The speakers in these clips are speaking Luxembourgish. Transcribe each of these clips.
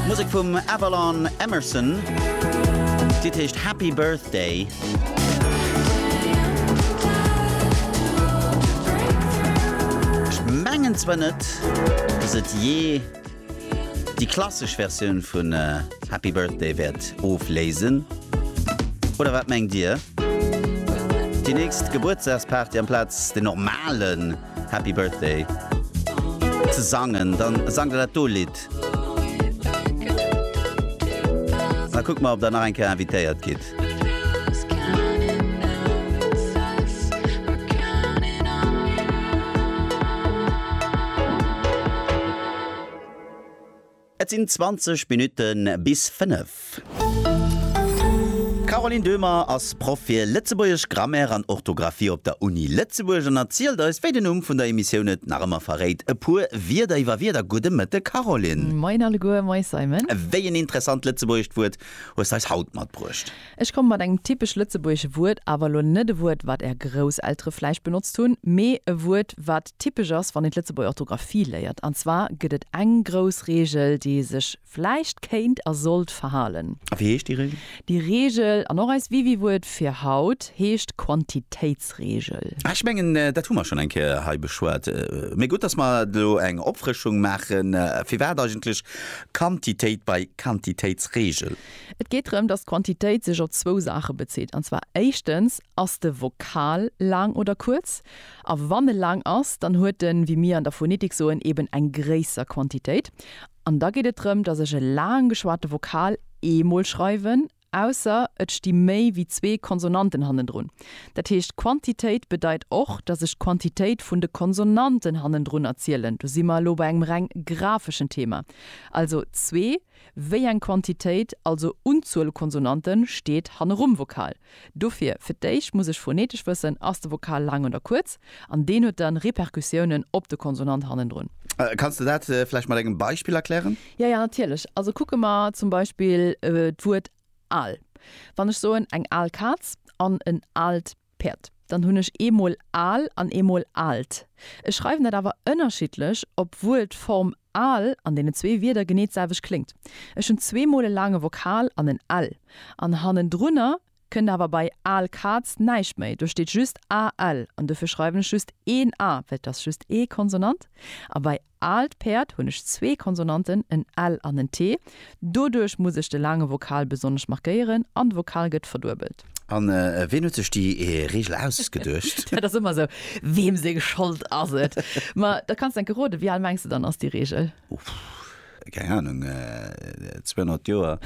Musek vum Avalon Emerson, d'Lidd heescht Happy Birthday. Mengen zwar net dass et jee déi klassesch Versioun vun Happy Birthday wäert ofléisen, oder wat mengt dir? Déi nächst Gebuertsdagsparty amplaz de normalen. Happy Birthday ze sangen, dann sangt der dat do Lidd. Da kuckt mer, ob der nach eng Kéier invitéiert gitt. Et sinn 20 Minutte bis 5. D'Caroline Döhmer ass Proff fir Lëtzebuergesch, Grammaire an Orthografie op der Uni Lëtzebuerg an erzielt eis, wéi den Numm vun der Emissioun et nach ëmmer verréit, e puer Wierder iwwer Wierder. Gudde Mëtte Caroline. Moin alleguer, moies Simon. Wéi en interessant lëtzebuergescht Wuert hues de eis haut matbruecht? Ech komme mat engem typesch lëtzebuergesche Wuert, awer elo net e Wuert, wat Är Grousseltere vläicht benotzt hunn, mee e Wuert, wat typesch ass, wann een d'Lëtzebuerger Orthografie léiert. An zwar gëtt et eng grouss Reegel, déi ee sech vläicht kéint a sollt verhalen. A wéi heescht déi Reegel? Déi Reegel, an och eist Wiwiwuert fir haut, heescht Quantitéitsreegel. Ah, ech mengen, dat hu mer schonn eng Kéier hei beschwat. Mee gutt, dass mer elo eng Opfrëschung maachen. Firwat eigentlech Quantitéit bei Quantitéitsreegel? Et geet drëm, dass d'Quantitéit sech op zwou Saache bezitt, an zwar éischtens, Ass de Vokal laang oder kuerz? A wann e laang ass, dann huet en, wéi mir an der Phonetik soen, eben eng gréisser Quantitéit. An da geet et drëm, dass ech e laang geschwate Vokal eemol schreiwen, ausser et sti méi wéi zwee Konsonanten hannendrun. Dat heescht, Quantitéit bedeit och, dass ech d'Quantitéit vun de Konsonanten hannendrunner zielen. Do si mer elo bei engem reng grafeschen Thema. Also zwee Wéi eng Quantitéit, also Unzuel Konsonanten, steet hannerum Vokal? Dofir, fir d'éischt muss ech phonetesch wëssen, ass de Vokal laang oder kuerz? An deen huet dann Repercussiounen op de Konsonant hannendrun. Kanns de dat vläicht mat engem Beispill erklären? Jo, jo, natierlech. Also kucke mer zum Beispill d'Wuert al. Wann ech soen eng al Kaz an en aalt Päerd, dann hunn ech eemol al an eemol aalt. Ech schreiwen dat awer ënnerschiddlech, obwuel d'Form Al an deenen zwee Wierder genee d'selwecht kléngt. Ech hunn zweemol e laange Vokal an en l, an hannendrunner kënnt awer bei al Kaz näischt méi. Do steet just AL an dofir schreiwen ech just een A, well et ass just ee Konsonant. A bei aalt Päerd hunn ech zwee Konsonanten, en L an en T. Doduerch muss ech de laange Vokal besonnesch markéieren an de Vokal gëtt verduebelt. An ween huet sech déi Reegel ausgeduecht? Dat ass ëmmer esou, weem seng Schold ass et? Ma da kanns de enke roden, wéi al mengs de dann ass déi Reegel? Keng Anung, 200 Joer?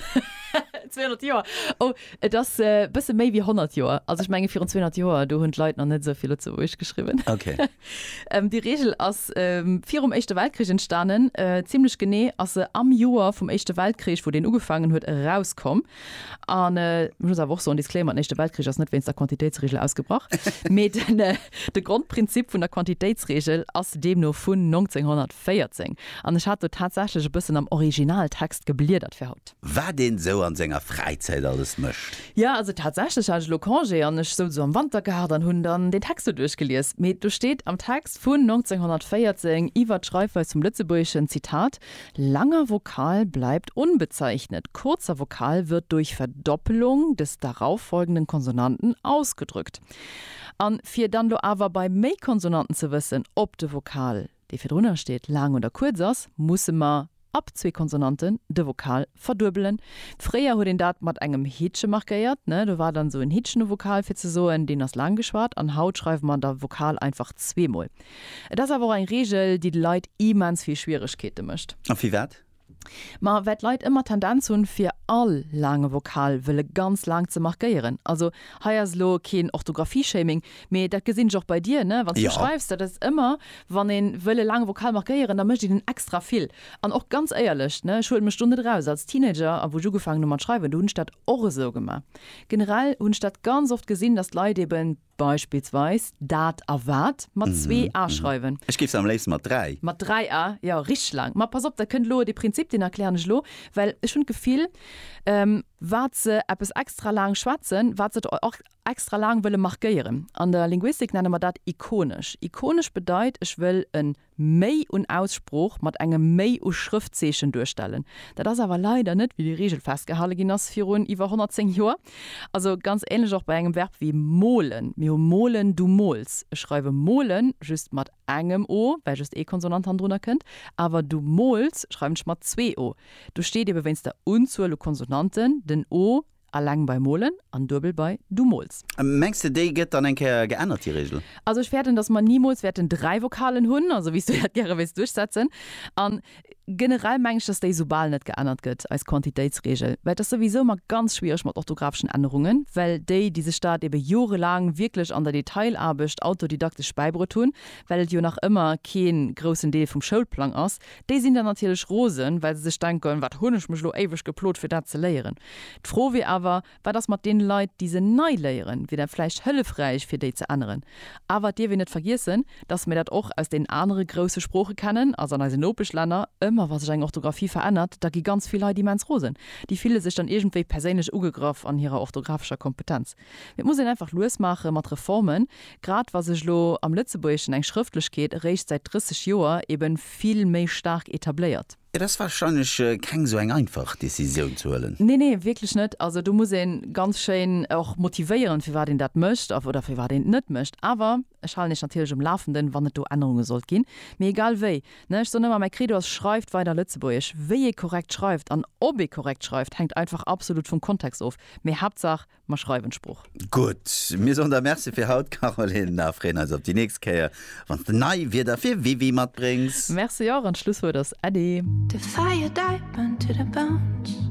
200 Joer? Oh, et ass e bësse méi wéi 100 Joer. Also ech menge virun 200 Joer, do hunn d'Leit nach net esou vill Lëtzebuergesch geschriwwen. Déi Reegel ass virum Éischte Weltkrich entstanen, zimmlech genee ass se am Joer vum Éischte Weltkrich, wou deen ugefaangen huet, erauskomm. An ech muss awer och soen, Disclaimer, den Éischte Weltkrich ass net wéinst der Quantitéitsregel ausgebrach, mee de Grondprinzip vun der Quantitéitsregel ass deemno vun 1914. An ech hat do tatsächlech e bëssen am Originaltext gebliedert fir haut. Wat een esou an senger Fräizäit alles mécht. Jo, also tatsächlech hat ech elo Congé an ech souz esou am Wantergaart an hunn dann deen Text do duerchgelies. Mee do steet am Text vun 1914 iwwert d'Schreifweis vum Lëtzebuergeschen, Zitat, Langer Vokal bleibt unbezeichnet, kurzer Vokal wird durch Verdoppelung des darauffolgenden Konsonanten ausgedrückt. An fir dann lo awer bei méi Konsonanten ze wëssen, ob de Vokal, dee virdrunner steet, laang oder kuerz ass, musse mer ab zwee Konsonanten de Vokal verduebelen. Fréier huet een dat mat engem Hittche markéiert, ne, do war dann esou en Hittchen um Vokal, fir ze soen, deen ass laang geschwat. An haut schreiwe mer da Vokal einfach zweemol. Et ass awer och eng Reegel, déi de Leit immens vill Schwieregkeete mécht. A firwat? Ma well d'Leit ëmmer d'Tendenz hunn, fir all laange Vokal wëlle ganz laang ze markéieren. Also hei ass elo keen Orthografie-Shaming, mee dat gesinn ech och bei dir, ne, wann s du schreifs. Dat ass ëmmer, wann ee wëll e laange Vokal markéieren, da mécht een en extra vill. An och ganz éierlech, ne, ech huele mech do net eraus, als Teenager a wou ech ugefaangen hu mat schreiwen, do hunn ech dat och esou gemaach. Generell hunn ech dat ganz oft gesinn, datt d'Leit eeben, Beispillsweis dat a wat mat zwee a schreiwen. Ech géif se am léifste mat dräi. Mat dräi a, jo, richteg laang. Ma pass op, dat kënnt elo. Dee Prinzip, deen erklären ech elo, well ech hunn d'Gefill, wat se eppes extra laang schwätzen, wat se och extra laang wëlle markéieren. An der Linguistik nenne mer dat ikonesch. Ikonesch bedeit, ech wëll e Méi un Aussprooch mat engem Méi u Schrëftzeechen duerstellen. Dat ass awer leider net wéi déi Reegel festgehale ginn ass virun iwwer 110 Joer. Also ganz ähnlech och bei engem Verb wéi molen. Mir hu molen, du mols. Ech schreiwe molen just mat engem o, well just ee Konsonant hannendrunner kënnt, awer du mols schreiwen ech mat zwee o. Do steet ebe wéinst der Unzuel u Konsonanten den o Alleng bei molen an duebel bei du mols. Mengs de déi gëtt dann eng Kéier geännert déi Reegel? Also ech fäerten datt mer nimools wäerten 3 Vokalen hunn, also wéis du dat gäre wéils duerchsetzen. An generell meng ech datt déi soubal net geännert gëtt, eis Quantitéitsreegel, well et ass souwisou ëmmer ganz schwiereg mat orthographeschen Ännerungen, well déi déi sech dat ebe jorelaang wierklech an der Detailaarbecht autodidaktesch bäibruet hunn, well et jo nach ëmmer kee groussen Deel vum Schoulplang ass, Déi sinn dann natierlech rosen, well se sech denken, Wat hunn ech mech elo éiweg geplot, fir dat ze léieren? D'Fro wier awer, Wat ass mat deene Leit, déi se nei léieren? Wier dat vläicht hëllefräich, fir déi ze änneren? Awer et dierf een net vergiessen, dass mir dat och aus deenen anere grousse Sprooche kennen, also an eisen Nopeschlänner. Ëmmer wa sech eng Orthografie verännert, da gi ganz vill Leit immens rosen. Déi fille sech dann iergendwéi perséinlech ugegraff an hirer orthografescher Kompetenz. Et muss een einfach lues maache mat Reformen, grad wa sech elo am Lëtzebuergeschen eng Schrëftlechkeet eréischt säit 30 Joer ebe vill méi staark etabléiert. Et ass warscheinlech keng esou eng einfach Decisioun ze huelen. Nee, nee, wierklech net. Also do muss ee ganz schéin och motivéieren, firwat een dat mécht oder firwat een et net mécht. Awer. Ech halen iech natierlech um Lafenden, wann et do Ännerunge sollt ginn. Mee egal wéi, ne, ech soen ëmmer, mäi Credo ass, Schreift weider Lëtzebuergesch! Wéi ee korrekt schreift an ob ee korrekt schreift, hänkt einfach absolut vum Kontext of. Mee Haaptsaach, mer schreiwen d'Sprooch. Gutt, mir soen der Merci fir haut, Caroline, a freeën eis op déi nächst Kéier, wann s de nei Wierder fir Wiwi matbréngs. Merci och, an d'Schlusswuert ass Äddi. The fire deepened to the bones.